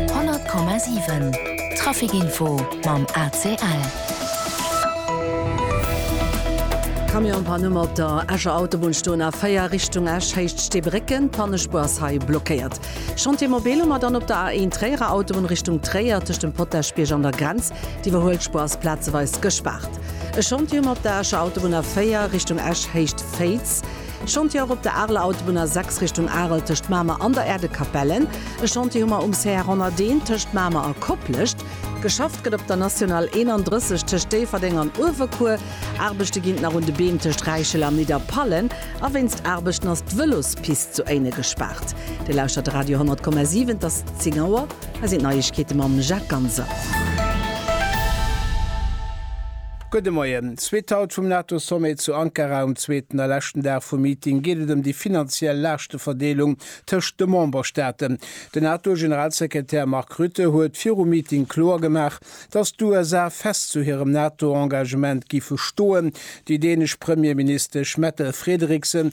100,7 Trafic Info mam ACL. Camionspanne op der Escher Autobunn, stoen a 4 Richtung Esch, Héicht Steebrécken. D'Pannespuer ass hei blockéiert. Chantier mobile mar dann op der A1 Tréierer Autobunn Richtung Tréier, tëscht dem Potaschbierg an der Grenz. D'Iwwerhuelspuer ass plazeweis gespaart. E Chantier um op der Escher Autobunn A4 Richtung Esch, Héicht Féiz. Chantier och op der Areler Autobunn A 6 Richtung Arel tëscht Mamer an der Erdekapelle. E Chantier hu mer um CR 101 tëscht Mamer a Koplescht. Geschafft gëtt op der National 31 tëscht Déifferdeng an Uewerkuer. Aarbechte ginn nach un de Beem tëscht Räichel a Nidderpallen a wéinst Aarbechten ass d'Vëlospist zu Éinen gespaart. Dir lauschtert Radio 100,7. Et ass 10 Auer. Hei sinn d'Neiegkeete mam Jacques Ganser. Gudde Moien. Zweet Haut vum NATO-Sommet zu Ankara. Um zweeten a leschten Dag vum Meeting geet et ëm déi finanziell Laaschteverdeelung tëscht de Memberstaaten. Den NATO-Generalsekretär Mark Rutte huet virum Meeting kloer gemaach, datt d'USA fest zu hirem NATO-Engagement gife stoen. Déi dänesch Premierministesch Mette Frederiksen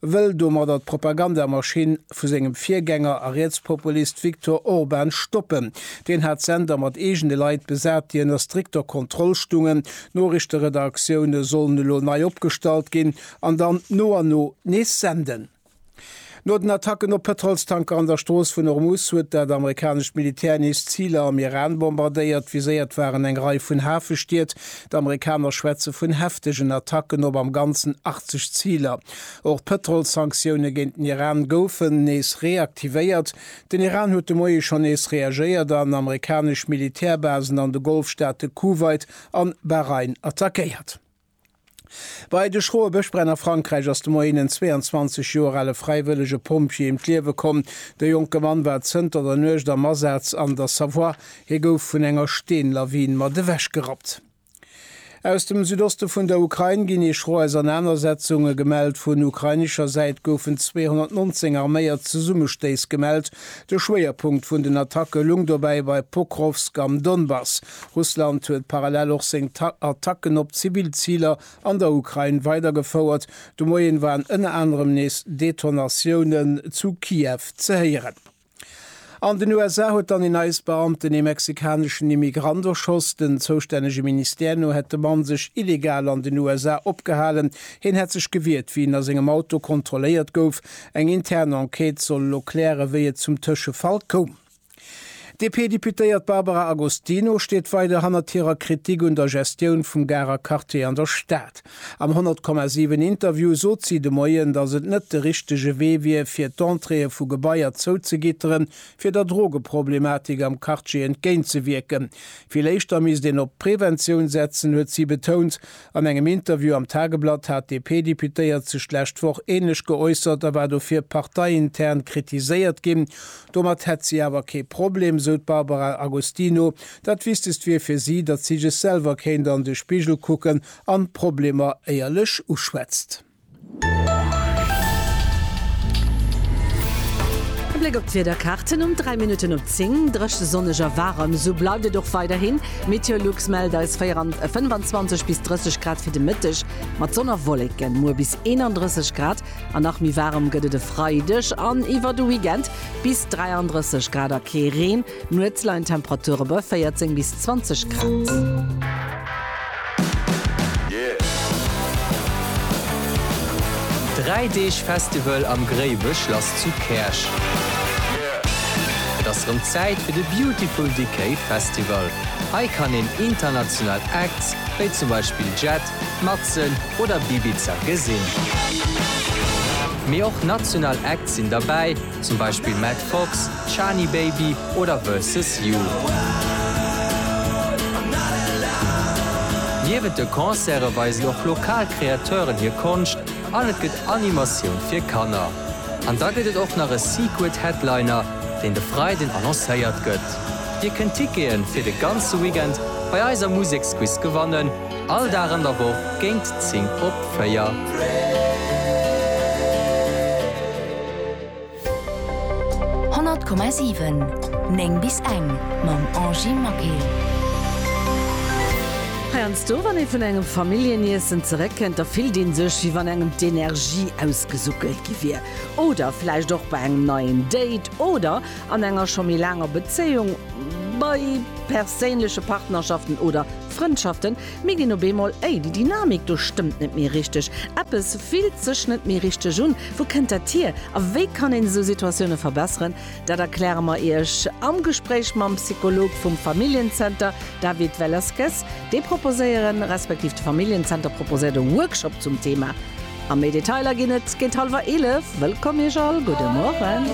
wëll domadder d'Propagandamaschinn vu sengem Virgänger a Rietspopulist Viktor Orban stoppen. Deen hat d'Sender mat eegene Leit besat, déi ënner strikter Kontroll stungen. D'Noriichteredaktioune sollen elo nei opgestallt ginn an dann no an no nees senden. No den Attacken op Pëtrolstanker an der Strooss vun Ormus huet dat amerikanescht Militär nees Ziler am Iran bombardéiert. Viséiert waren eng Rei vun Hafestied. D'Amerikaner schwätze vun heftegen Attacken op am Ganzen 80 Ziler. Och d'Pëtrolssanktioune géint den Iran goufen nees reaktivéiert. Den Iran huet de Moie schonn nees reagéiert an amerikanesch Militärbasen an de Golfstaate Kuwait an Bahrain attackéiert. Bei de schroe Bëschbränn a Frankräich ass de Moien en 22 Joer ale fräiwëllege Pompjee ëm d'Liewe komm. De jonke Mann war zënter der Nuecht am Asaz an der Savoie, Hie gouf vun enger Steenlawin mat ewech gerappt. Aus dem Südoste vun der Ukrain ginn ee schro Ausernanersetzunge gemellt. Vun ukrainescher Säit goufen 219 arméiert Zesummestéiss gemellt. De Schwéierpunkt vun den Attacke lung dobäi bei Pokrovsk am Donbass. Russland huet parallel och seng Attacken op zivill Ziler an der Ukrain weidergefouert. De Moien waren ënner anerem nees Detonatiounen zu Kiew ze héieren. An den USA huet dann een ICE-Beamten ee mexikaneschen Immigrant erschoss. Den zoustännege Ministère no hätt de Mann sech illegal an den USA opgehalen. Hien hätt sech gewiert, wéi en a sengem Auto kontrolléiert gouf. Eng intern Enquête soll elo klären, wéi et zum Tëschefall koum. D'DP-Deputéiert Barbara Agostino steet weider hannert hirer Kritik un der Gestioun vum Garer Quartier an der Stad. Am 100, 7 Interview sot si de Moien, datt et net de richtege Wee wier, fir d'Entréeë vu Gebaier zouzegitteren, fir der Drogeproblematik am Quartier entgéintzewierken. Vill éischter misst een op d'Preventioun setzen, huet si betount. An engem Interview am Tageblatt hat d'DP-Deputéiert sech d'lescht Woch änlech geäussert a war dofir parteiintern kritiséiert ginn. Domat hätt si awer kee Problem, sou d'Barbara Agostino. Dat Wichtegst wier fir si, datt si sech selwer kéint an de Spigel kucken, An d'Problemer éierlech uschwätzt. E Bléck op d'Wiederkaarten um 3 Minutten op 10, Drëche, sonneg a waarem, esou bleift et och weiderhin. Meteolux mellt eis 25 bis 30 Grad fir de Mëtteg, mat Sonn a Wolleken. Muer bis 31 Grad an nach méi waarem gëtt et e Freideg an iwwer de Weekend, bis 33 Grad a kee Reen. Nuets leien d'Temperature bei 14 bis 20 Grad. Dräi Deeg Festival am Gréiweschlass zu Käerch. Et ass rëm Zäit fir de Beautiful Decay Festival. Hei kann een international Acts wéi zum Beispill Jet, Matzen oder Bibiza gesinn. Mee och national Acts sinn derbäi. zum Beispill Matt Fox, Shani Baby oder Versus You. Niewent de Concerte weisen och lokal Kreateuren hir Konscht an et gëtt Animatioun fir Kanner. An da gëtt et och nach e Secret Headliner, deen de Freiden annoncéiert gëtt. Dir kënnt Tickete fir de ganze Weekend bei eiser Museksquiz gewannen. All Dag an der Woch géint 10 op 4. Honnert Komma siwen, néng bis eng, Mam Angie Maquet. Heiansdo wann ee vun engem Familljeniessen zeréckkënnt, da fillt ee sech, wéi wann engem d'Energie ausgesuckelt gi wier. Oder vläicht och bei engem neien Date oder an enger scho méi laanger Bezéiung, bei perséinleche Partnerschaften oder. Frëndschaften, mir ginn op eemol, Ey, déi Dynamik do stëmmt net méi richteg, eppes fillt sech net méi richteg un. Wou kënnt dat hier a wéi kann een esou Situatioune verbesseren? Dat erkläre mer Iech am Gespréich mam Psycholog vum Familljen-Zenter David Velasquez. Déi proposéieren, respektiv de Familljen-Zenter proposéiert e Workshop zum Thema. A méi Detailer ginn et géint hallwer 11. Wëllkomm Iech all, gudde Morgen.